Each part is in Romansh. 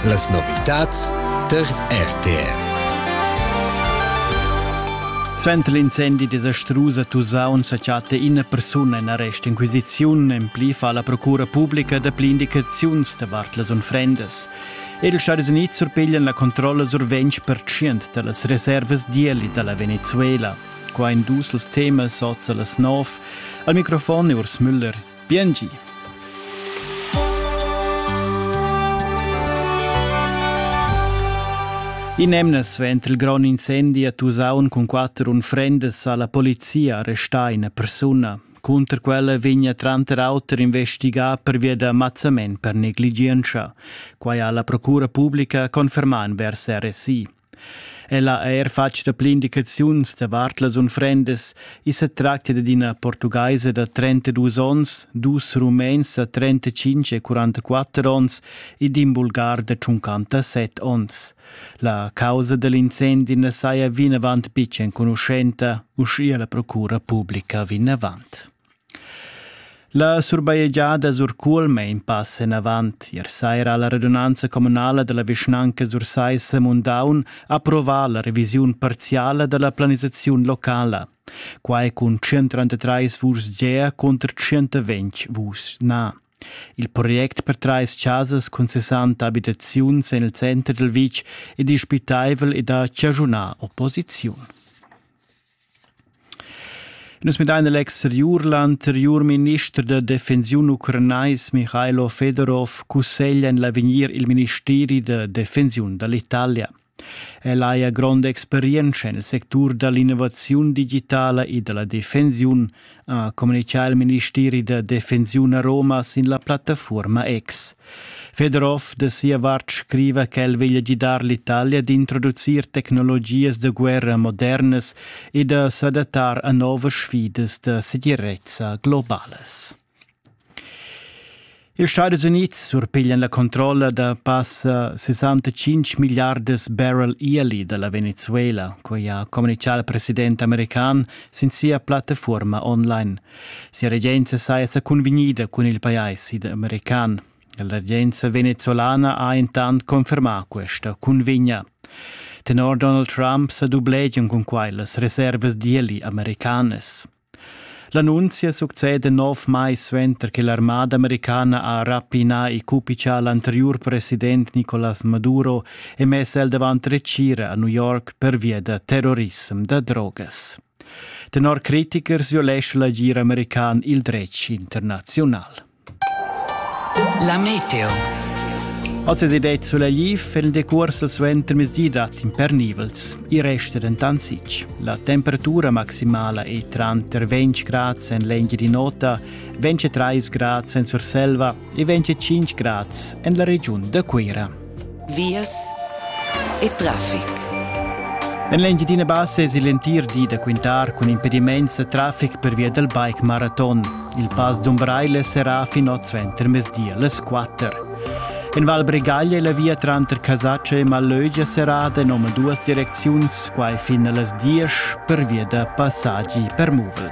Las novitads der RTR. Suenter l'incendi de Strusa Tusaun sa chatta ina persuna in arrest inquisiziun. En pli fa la procura pubblica dapli indicaziuns davart las unfrendas. Ed els Stati Uniti surpiglian la controlla sur 20% delle riserve d'ieli della Venezuela. Qua in dus els temas sozza las nov. Al microfon Urs Müller. Biengi! In'emna suenter il grond incendi a Tusaun cun quatter unfrendas ha la polizia arrestà ina persuna. Cunter quella vegna tranter auter investigà pervia da mazzament per negligientscha. Quai ha la procura publica confermà envers RSI. Ella ha eir fatg dapli indicaziuns davart las unfrendas. I sa tractia dad ina portugaisa da 32 onns, dus rumens da 35 e 44 onns e d'in bulgar da 57 onns. La causa da l'incendi na saja vinavant betg enconuschenta, uschia la procura publica vinavant. La surbajegiada Surcuolm è in pass enavant. Ier saira ha la radunanza communala da la vischnanca Sursaissa-Mundaun approvà la revisiun parziala da la planisaziun locala. Quai cun 133 vuschs gea cunter 120 vuschs na. Il project per trais chasas cun 60 abitaziuns en il center dal vitg è dispitaivel ed ha chaschunà opposiziun. Nus midain l'exteriur. L'anteriur minister da defensiun ucranais Michailo Fedorov cusseglia en l'avegnir il ministeri da defensiun da l'Italia. El haja gronda experientscha nel sectur da l'innovaziun digitala e da la defensiun ha communitgà il ministeri da defensiun a Roma sin la plattafuorma X. Fedorov da sia vart scriva ch'el veglia gidar l'Italia d'introducir tecnologias da guerra modernas e da s'adattar a novas sfidas da segirezza globales. Ils Stadis Unids surpiglian la controlla da passa 65 milliardas barrel yearly da la Venezuela, quai ha communitgà il president american sin sia plattafuorma online. Sia regenza saja sa cunvegnida cun il pajais id american. La regenza venezuelana ha intant confermà questa cunvegna. Tenor Donald Trump sa dublegian cun quai las reservas d'ieli americanas. L'annunzia succeda nov mais suenter che l'armada americana ha rapinà e cupichà l'anteriur president Nicolas Maduro e mess el davant retgira a New York pervia da terrorissem da drogas. Tenor critichers violescha l'agir american il dretg internaziunal. La meteo. Als es idee solegliv feren decuors al suenter mezdi dat impernivels. I resta dentant sich. La temperatura maximala è tranter 20 grad en l'engia di nota, 23 grad en Surselva e 25 grad en la regiun da Cuira. vias e traffic. En l'Engiadina Bassa es l'entir di da quintar cun impedimaints da traffic per via dal bike maraton. Il pass d'Umbraile serà fin oz suenter mezdi las 4. En Val Bregaglia e la via tranter Casaccia e Malögia serrada in omaduas direcziuns, quai fin a las 10 per via da passaggi per muvel.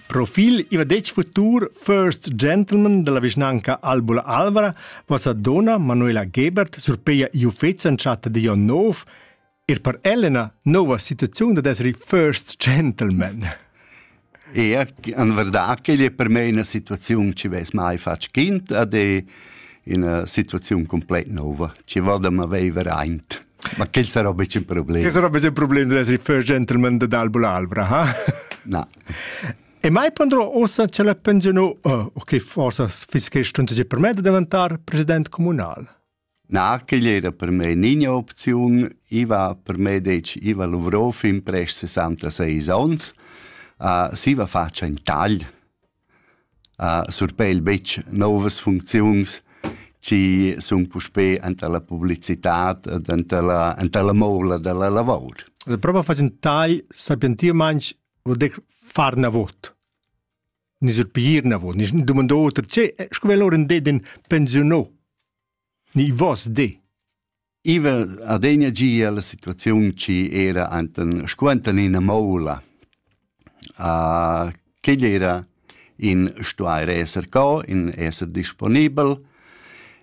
Profil iva detg futur First Gentleman dalla vischnanca Albula Alvra vasa dona Manuela Gebert surpeia iufets an chatta di Jon Nov, er per Elena nova situaziun da desri First Gentleman. E en verdad che è per me una situazione che ves mai fatg kind ad è una situazione complèt nova. Ci voda ma vevere aint. Ma quel sarà un bisschen problema. Che sarà un bisschen problema di essere first gentleman dell'Albula Alvra, ha? No, E mai pondrò ossa che la pensionu, oh, o che forsa fiss che stunta di per me da davantar president comunal? Na, che era per me nina opziun. Iva per me dec Iva Luvrov in prest 66 ons. Uh, siva faccia in tagl. Uh, surpel bec novas funcziuns ci sun puspé anta la publicitat anta la, anta la moula della lavor. Proba facen tai sapientir manch Vo dec far na vot. Ni sur pigir na vot, ni domandò oter, che, sco vel oren de den pensionò? Ni vos de? Iva adegna gia la situaziun ci era anten squentan ina moula. Uh, che era in stuair esser co, in esser disponibel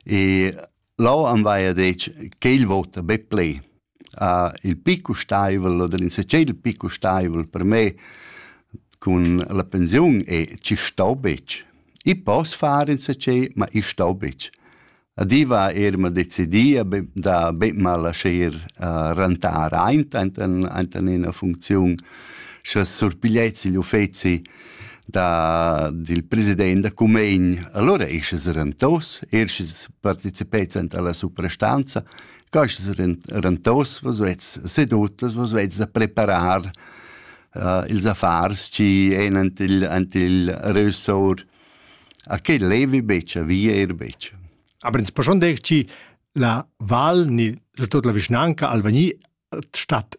e Lò am vaia detg ch'el vota be ple. Uh, il pli custaivel oder insatgé il pli custaivel per me cun la pensiun è chi sto betg. I poss far insatgé, ma i sto betg. Adiva er ma decidia da be ma lascher uh, rentar aint, aint in ena funcziun, sche surpiglietsi l'uffezi da, dil president da Cumegn. Allora ei sches rentaus, er sches participeis alla suprastanza, ca sches rentaus, was vets sedut, was vets da preparar uh, ils affars ci en ant il, ant il ressor. A che levi beccia, via er beccia. Aber ins poschon dech ci la val ni tot la vischnanca Alvagni statt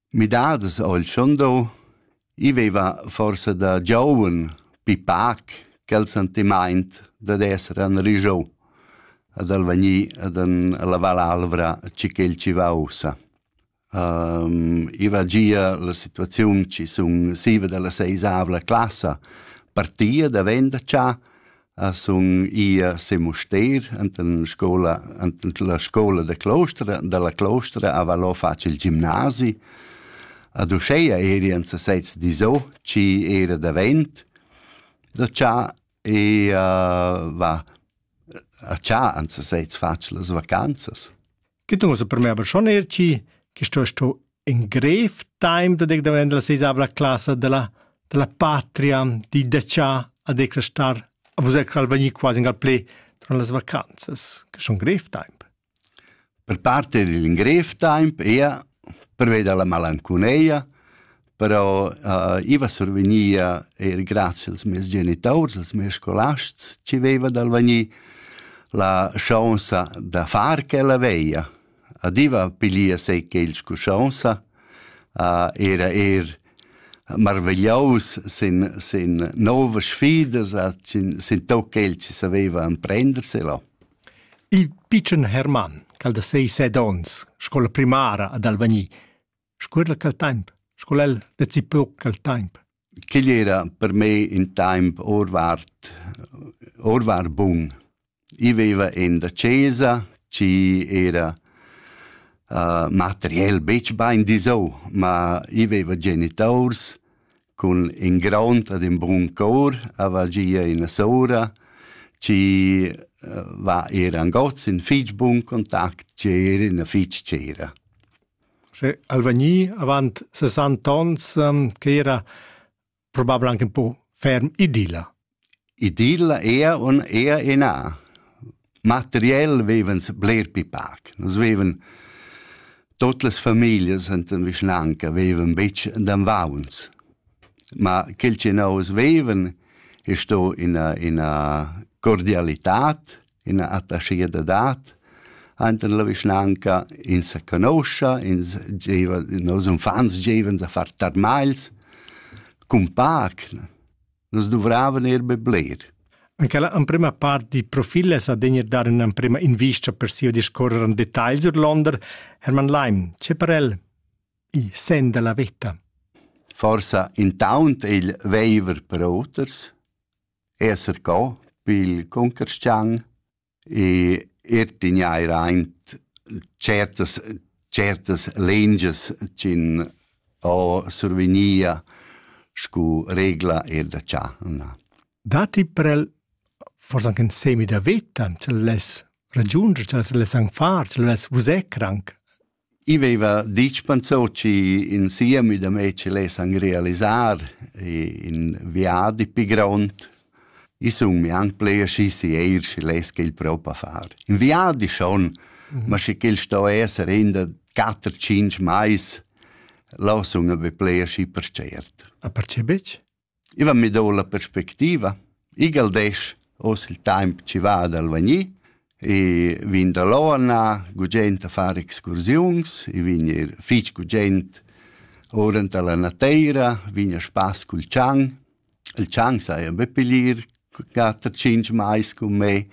Midadas ho il Schondau. I veiva forsa da gioun pipac quel sentimaint dad esser anrigiou, ad al vegnir ad an lavar l'alvra chi ch'el chi va ussa. I va gia la situaziun chi sun siva da la seisavla classa partia da venda cha, sun i a Se Mustair enten scoula enten la scoula da Clostra dalla Clostra a Valò fac il gimnasi. Ad uscheia eri en se sez diso, ci era davent da cha e uh, va a cha en se sez fac las vacanzas. che tu so per me aber schon er ci che sto sto in grev time da dec davent la seisavla classa della della patria di decia a decrestar a vos cal venir quasi gal play durant las vacanzas che schon grev time per parter il grev time ia per veder la malanconeia però uh, iva survegnia eir grazie als meis genitaurs, als meis scolasts ci veva dal venir la chance da far quella veia. Adiva pilia se che il scuschanza uh, era er marvegliaus sin, sin nove sfidas, sin, sin toc quel ci saveva emprenderse là. Il picen Hermann, cal da sei sed ons, scola primara ad Alvagni, Scuerla quel temp, sco el decipiu quel temp. Quegl era per me in temp orvart, orvart bun. I veva en da chesa, ci era uh, materiel betg bain disau, ma i veva genitors cun in grond ad in bun cor, ava gia ina sora, ci uh, va era angoz in fitg bun contact, ci era ina fitg cera. Sche al vegni avant sessanta onns quei era probabel anche in po ferm idilla. Idilla era un era ina. Materiell vevens bler pli pac. Nus veven tot las familias enten vischnanca veven betg d'anvauns. Ma quel che nous veven è sto ina ina cordialitat ina attaschia da dat, Ainten la vischnanca ins sa conoscia, ins giva, nos unfants givan a far tarmails, cun pac, nus duvravan er be bler. Anche la emprima part di profile sa degner dar un'emprima invista per sia discorrer en detail sur Londra, Hermann Leim, c'è per el i sen della vita? Forsa intaunt il veiver per oters, esser co pil cuncarschian e er tegnair aint certas certas lengias ch'in ho survegnia scu regla er da cha na. Datti prel forsa anche in semi da vita, se less ragiunder, se less anche far, se less vusecr anche? I veva ditg Panzocci in siemi da mei che lessan realisar in viadi pi grond. I sun mi anc ple aschi sieir schi less quel propa far. In viadi schon, mhm. ma sche quel sto esser in da quatter, cinc mais, lo sun be ple aschi percert. A perce bitg? I va mi do la perspectiva. Igl desch oz il taimp chi va dal vegnir e vin da Loana, gugent a far excursiuns, i vin ir fich gugent ora anta la nateira, vin a spass cul tschang. Il tschang saja be piglier quatter tschinch mais cun me,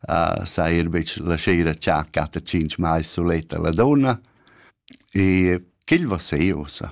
uh, saja ir betg la sera cha quatter tschinch mais suletta la donna. E ch'el va se ossa.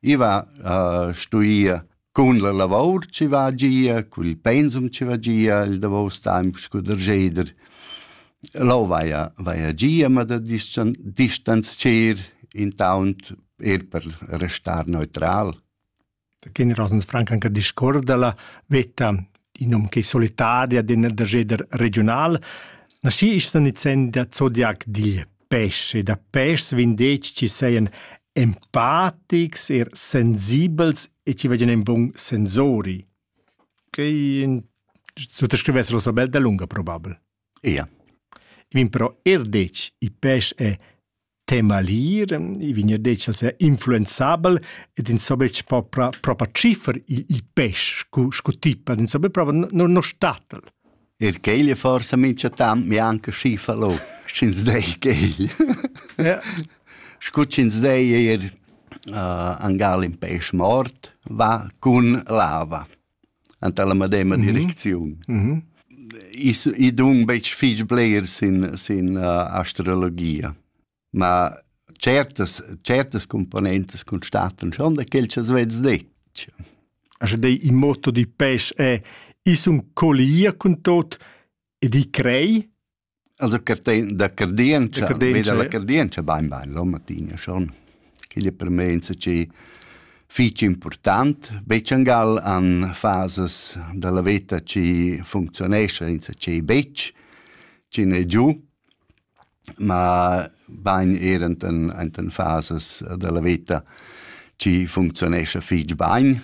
I va a stuir cun la lavor chi va gia, cun il pensum chi va gia il davos temp scu darscheder. Lò vaja vaja gia, ma da distan distanzcher intaunt eir per restar neutral. Da generosens franc anche discuor da la vetta in nom che solitaria den darscheder regional. Na schi ist nizzenda Zodiac digl pesch e da peschs vendetgs chi sajan empatics e sensibels e chi vajan in bun sensori. Quei suttascrivess Rosa Bel dalunga probabel. Ia. I vin però er detg, i pesch è temalir, i vin er detg als è influenzabel ed insomma po propa ciffer il, il pesch scu, scu tipa, insomma propa no, no statel. Er quegl è forsa mincha temps mianca schi falò, sch'ins dei quegl. Ja. Scu ch'ins dei eir uh, angal in pesch mort va cun lava anta la medema mhm. direcziun. Mm -hmm. I, I dun betg fich blers in, in uh, astrologia. ma certas certas componentas constatan schon da quel cha svezs detg. Also dei il motto di pêche è i sun collier cun tot e di crei Also da cardienza, veda la cardienza bain bain, lo Martina schon. Quella per me è che fitch important, Becciangal an fases della vita ci funzionesce, senza ci betg, ci ne giù, Ma bain eir ant ant ën fasas da la veta chi funcziunescha fich bain,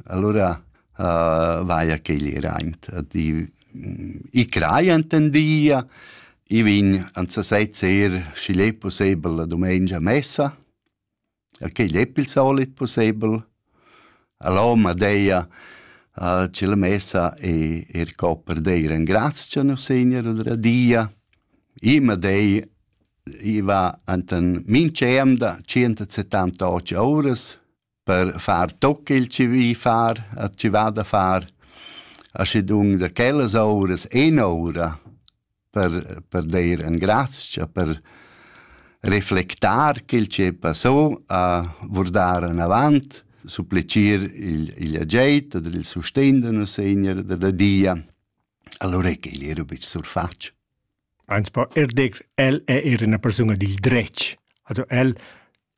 alura vaia ch'igl i raint. I craja ant ün di, i vegn ant sasez eir, schi'l e pussebel la dumengia a messa e quei lepp il solit pussebel. Allò ma deia uh, che la messa e er co per dei ringraziar nus Segner oder a Dia. I ma dei i va enten minceam da 170 oras per far tot quel che vi far, a ci va da far, a schedung da quellas oras, en ora, per, per deir engrazcha, per reflectar quel che passò, a vurdar anavant, supplicir il, il ageit oder il sustegn de nos Segner della Dia, allora che egli era bis surfac. Eins pa erdex el è era una persona dil dretg. Also el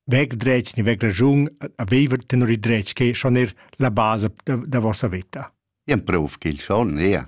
wegdretg ni wegrajung aveva tenor il dretg che schon er la base da, da vossa vita. Ien prov che il schon, ja.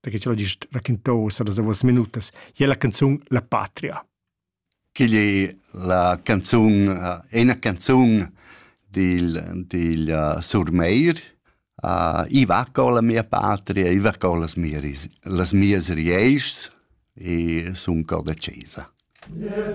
perché ce l'ho gist raquintà uossa las duos minutas, i è la canzun La patria. Quigl è la canzun, è una canzun dil, dil uh, Surmeir. Uh, I va con la mia patria, i va con las mie, las mie rieischs e sun cor da Cesa. Yeah.